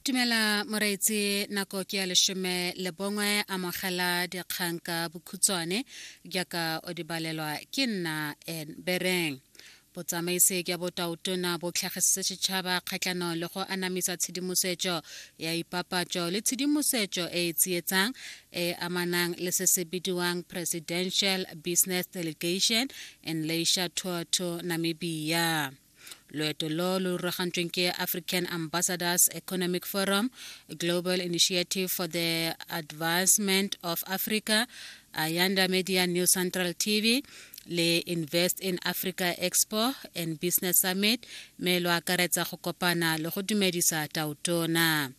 Tumela moreitse nako ke ya leshome le bongwe amogela dikgang ka bokhutshwane jaaka o di balelwa ke nna en bereng botsamaisi jwa botaotona bo tlhagisitse setšhaba kgatlhanong le go anamisa tshedimosetso ya ipapatso le tshedimosetso e e tsietsang e amanang le se se bidiwang presidential business delegation and leisure tour to namibia loeto lo lo ruragantsweng ke african ambassadors economic forum global initiative for the advancement of africa ayanda media new central tv le invest in africa expo and business summit me lo akaretsa go kopana le go dumedisa tautona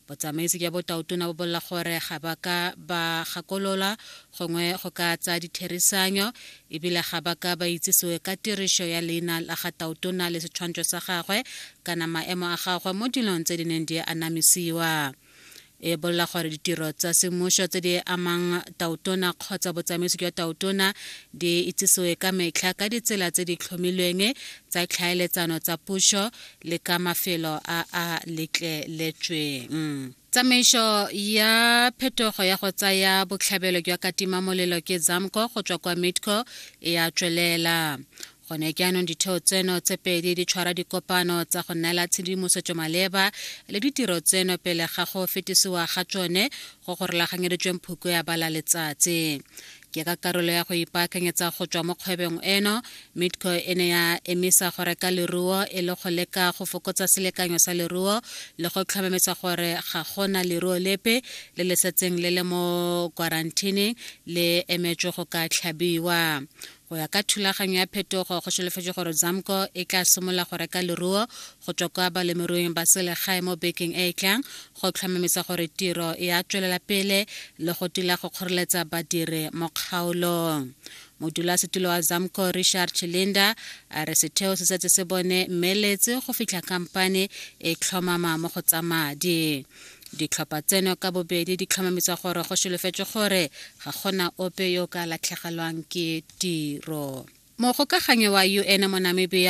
Botsamaisi jwa botaotona bo bolela gore ga ba ka ba gakolola gongwe go ka tsaya ditherisanyo ebile ga ba ka ba itsisiwe ka tirišo ya leina la ga taotona le setshwantsho sa gagwe kana maemo a gagwe mo dilong tse di neng di anamisiwa e bolela gore ditiro tsa semmušo tse di amang taotona kgotsa botsamaisi jwa taotona di itsisiwe ka metlha ka ditsela tse di tlhomilweng tsa tlhaeletsano tsa pušo le ka mafelo a a letleletsweng tsamaiso ya phetogo ya go tsaya botlhabelo jwa katima molelo ke zamco go tswa kwa midco e a tswelela gone jaanong ditheo tseno tse pedi di tshwara dikopano tsa go neela tshedimosetso maleba le ditiro tseno pele ga go fetisiwa ga tsone go go rulaganyeditsweng phuko ya bala letsatsi ke ka karolo ya go ipaakanyetsa go tswa mo kgwebong eno midco e ne ya emisa go reka leruo e le go leka go fokotsa selekanyo sa leruo le go tlhomamisa gore ga gona leruo lepe le le setseng le le mo kwarantine le emetswe go ka tlhabiwa go ya ka thulaganyo ya phetogo go solofetse gore zamco e tla simolola go reka leruo go tswa kwa balemirui ba selegae mo bekeng e e tlang go tlhomamisa gore tiro e a tswelela pele le go tila go kgoreletsa badiri mo kgaolong modulasetulo wa zamco richard chilinda a re setheo se setse se bone mmeeletse go fitlha kampane e tlhomama mo go tsa madi ditlhopha tseno ka bobedi di tlhomamisa gore go solofetswe gore ga gona ope yo ka latlhegelwang ke tiro mogokaganyo wa un mo namibia